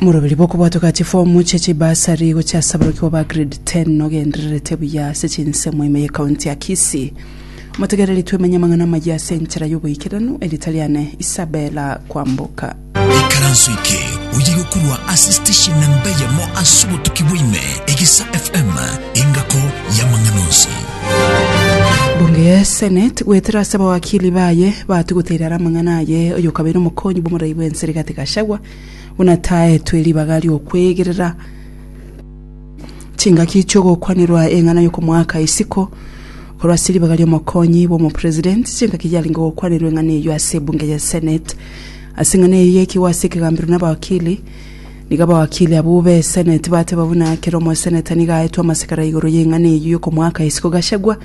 Morobiri bw'okobwatwa ka chifomu chia chibasari gochia ase aborokigwa ba grade 10 nogendererete buya ase chinsemo ime ye county ya Kisii. Motegereri twemenye amang'ana amaya ase enchera y'oboikeranu, erita riane Isabella Kwamboka. Ikaranso eke oye gokorwa ase station namba eyemo ase obotuki bwa ime, Egesa FM, engako y'amang'ana onsi. Bunge ya Senate goetera ase abawakili baye bato goteera are amang'ana aye oyokabeire omokonyi bw'omorai bw'ense Rigathi Gachagua buna taetwe ribaga ri'okwegerera chingaki chi'ogokwanirwa eng'ana y'okomoaka isiko korwa ase ribaga ri'omokonyi bw'omopresident chingaki yarenge gokwanirwa eng'ana eyio ase ebunge ya Senate ase eng'ana eyio yaikigwa ase ekegambero nabawakili Nigo abawakili abwo b'Eseneti bateba buna ekero omoseneta nigo aetwe amasikara igoro y'eng'ana eyio y'okomoaka isiko Gachagua,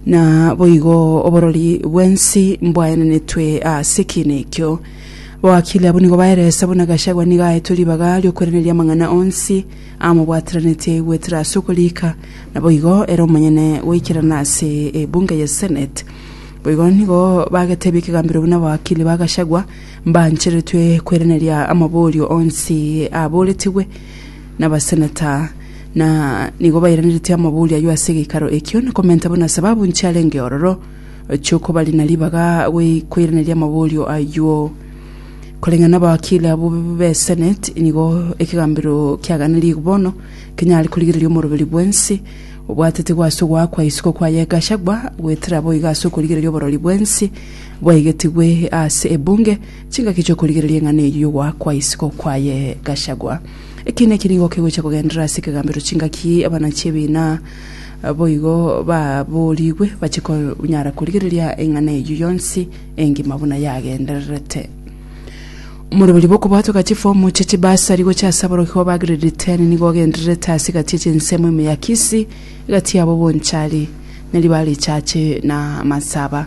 na boigo oborori bw'ensi mbwaenenetwe ase ekiina ekio. Abawakili abwo nigo baeresa buna Gachagua nigo aetwe ribaga ri'okweraneria amang'ana onsi amobwateranetie aigwetera ase okoriika, na boigo ere omonyene goikerana ase ebunge y'Eseneti. Boigo nigo bagete ebi'ekegambero buna abawakili ba Gachagua, Mbaancheretwe kweraneria amaborio onsi abooretigwe nabaseneta, na nigo bairaneretie amaborio ayio ase egeikaro ekio, na komenta buna sababu nchiarenge ororo chi'okobarina ribaga gwe- kweraneria amaborio ayio. Koreng'ana nabawakili abwo b'eseneti, nigo ekegambero kiaganerigwe bono kenyare korigereria omoroberi bwensi obwatete gwase ogoakwa isiko kwaye Gachagua goetera boigo ase okorigereria oborori bwensi bwaigetigwe ase ebunge chingaki chi'okorigereria eng'ana eyio y'ogoakwa isiko kwaye Gachagua. Eki naki nigo kegochia kogenderera ase ekegambero chingaki abana chi'ebiina boigo baboorigwe bache konyara korigereria eng'ana eyio yonsi engima buna yagendererete. Omorobori bw'okobwatoka chifomu chia chibasari gochia ase aborokigwa ba grade ten nigo ogendererete ase egati echinsemo ime ya Kisii egati yabo Bonchari, Nariba Richache na Matsaba.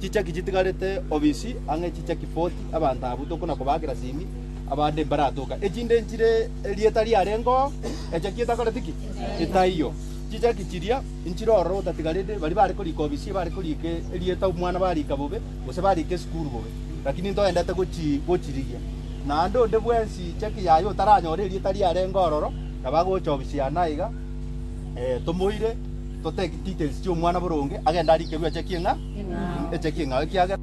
Chichaki chitigarete obisi, ang'e chichaki forty, abanto abwo tokona kobaakera simi, abande mbaratoka. Echinde nchire erieta riarengo, echaki etakoreti ki? Etaiyo. Chichaki chiria nchire ororo otatigarete, baria bare korika obisi, bare korika erieta omwana barika bobe, gose barika esukuru bobe. Lakini ntoendete gochi- gochirigia. Naende onde bwensi chaki yaye otaranyore erieta riarengo ororo, nabo agocha obisi ane aiga, Eh, tomoire, totake details chi'omwana boronge, agende arikerwe eche ki'eng'a, eche ki'eng'ao, ekiagera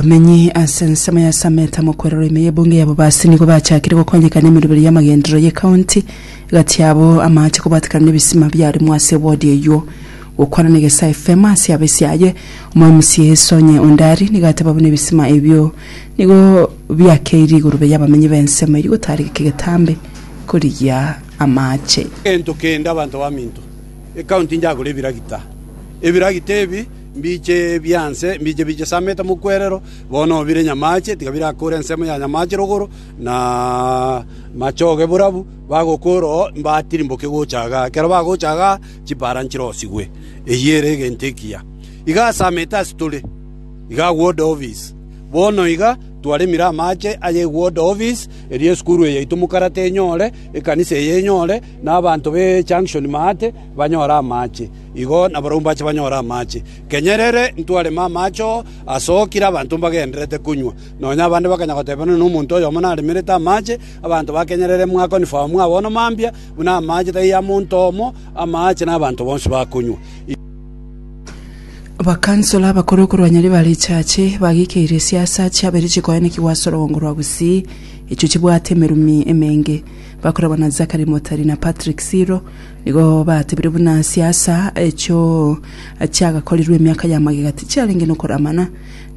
Abamenyi ase ensemo ya Samet amo kwerora ime y'ebunge ya Bobasi nigo bachakire gokonyeka n'emeroberi y'amagenderero y'ecounty gati yabo amaache kobwatekana n'ebisima biaremwa ase ewodi eyio. Gokwana n'Egesaa FM ase abisiaye, Omomc Sonye Ondari nigo ateba buna ebisima ebio Nigo biakeire igoro baye abamenyi b'ensemo eria gotaarigeka egetambe korigia amaache. Egento kende abanto baminto ekaunti njagore ebiragita. Ebiragita ebi mbiche bianse, mbiche bichisamete mokwerero, bono obire nyamaache, tiga birakore ensemo ya nyamaache rogoro, na machoge borabu, bagokora oo, mbatirimboke gocha igaa. Ekero bagocha igaa, chipara nchirosigwe. Eyio ere egento ekiya. Iga asamete ase tore. Iga agwode ofisi. Bono iga twaremire amache ay'egwode ofisi, erio esukuru eye yaito mokarate enyore, ekanisa eye enyore, na abanto be Junction Maate banyore amache. Igo nabarabwo mbache banyore amache. Kenyerere ntwareme amache oo, asokire abanto mbagendererete konywa. Nonya abande bakanya goteba nonya nomonto oyomo naremerete amache. Abanto ba Kenyerere mwakonifamu ng'a bono mambia buna amache taiyo amonto omo, amache na abanto bonsi bakonywa. Abakansoro abakoro korwa nyari ba richache bagekeire esiasa chiabere chikoenekigwa ase orogongo rwa Gusii echio chibwate emerumi emenge. Bakorabwa na Zachary Motari na Patrick Siro nigo batebire buna siasa echio chiagakorirwe emiaka ya magega tichiarenge nokoramana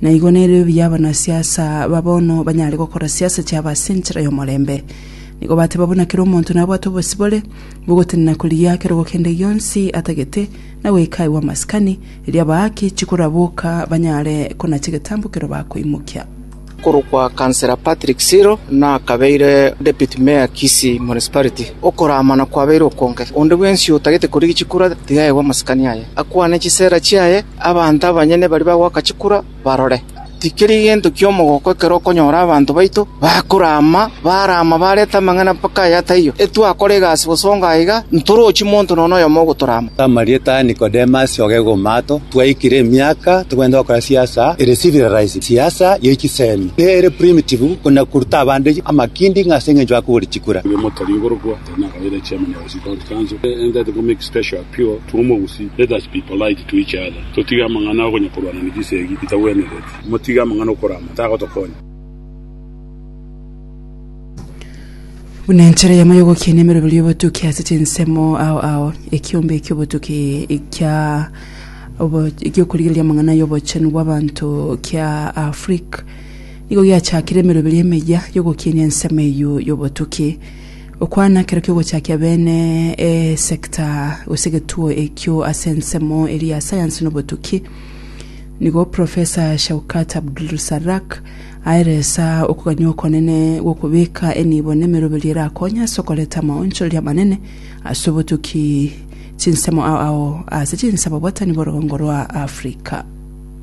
na igo nere obuya abanasiasa ba bono banyare gokora siasa chiabo ase enchera y'omorembe. Nigo bateba buna kera omonto nabwate obosibore Gogotenena koria kerogo kende gionsi atagete, na goika agwo amasikani, erio abaake chikoraboka banyare konacha egetambo ekero bakoimokia. Okorokwa Councillor Patrick Siro nakabeire Deputy Mayor Kisii Municipality. Okoraamana kwabeire okonge. Onde bwensi otagete koria egichikura tiga aegwe amasikani aye, akwane chisera chiaye, abanto abanyene baria bagoaka chikura, barore. Tikeri gento ki'omogoko ekero okonyora abanto baito bakorama, barama barete amang'ana mpaka aya taiyo, etwakora egasi bosongo aiga, ntorochi monto nonya noyomo ogotorama. Amarieta a Nikodemus ogegomaato, twaikire emiaka togenda gokora siasa ere civilized, siasa ye chisemi, ere primitive, buna koruta abande amakindi ng'a ase engencho bakogora chikura. Oyomo tari igoro bwao, tari nakabaire chairman of. Buna enchera eyemo y'ogokinia emeroberio y'obotuki ase chinsemo ao ao, ekiombe ki'obotuki kia obo- gi'okorigereria amang'ana y'obochenu bw'abanto kia Afrique nigo giachakire emeroberio emeyia y'ogokinia ensemo eyio y'obotuki. Okwana ekero ki'ogochakia bene esecta gose egetuo ekio ase ensemo eria ya sayansi na obotuki, nigo Professor Shaukat Abdulrusarak aeresa okogania okonene gw'okobeka enibo na emeroberio erakonye ase okoreta amaonchoreria amanene ase obotuki chinsemo ao ao ase chinsemo bwatani bw'orogongo rwa Africa.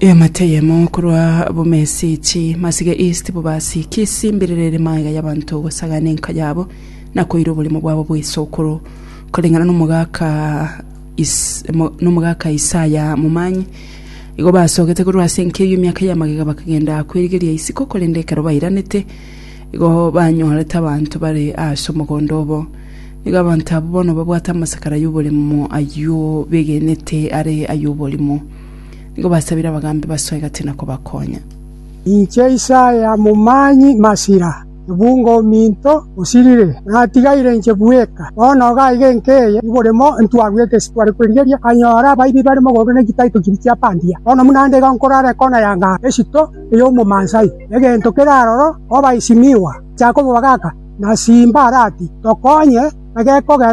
Eamate eyemo korwa bomesechi masige east bobasi Kisii mbirerere magega y'abanto gosagana enka yabo na koira oborimo bwabo bw'esokoro koreng'ana nomogaka is mo- nomogaka Isaya momanyi igo basogete korwa ase enka eyio emiaka y'amagega bakagenda kwerigeria isiko korende ekero bairanete Igo banyorete abanto bare ase omogondo obo. Nigo abanto abwo bono babwate amasakara y'oborimo ayio begenete are ay'oborimo. Nigo basabire abagambi basoe egati na kobakonya. Inche Isaya momanyi masira, ebungo ominto osirire, natigaire inche bweka. Bono iga aiga enka eye y'oborimo ntwarwete ase tware kwerigeria, nkanyora abaibi bare mogondo ne chitaito chiria chiapandia. Bono buna nde iga nkorara ekona ya ngaro, esito ey'omomansai. Egento kere aroro obaisi niwa, chaka omobaga aka, na simba arati, tokonye, na gekogera.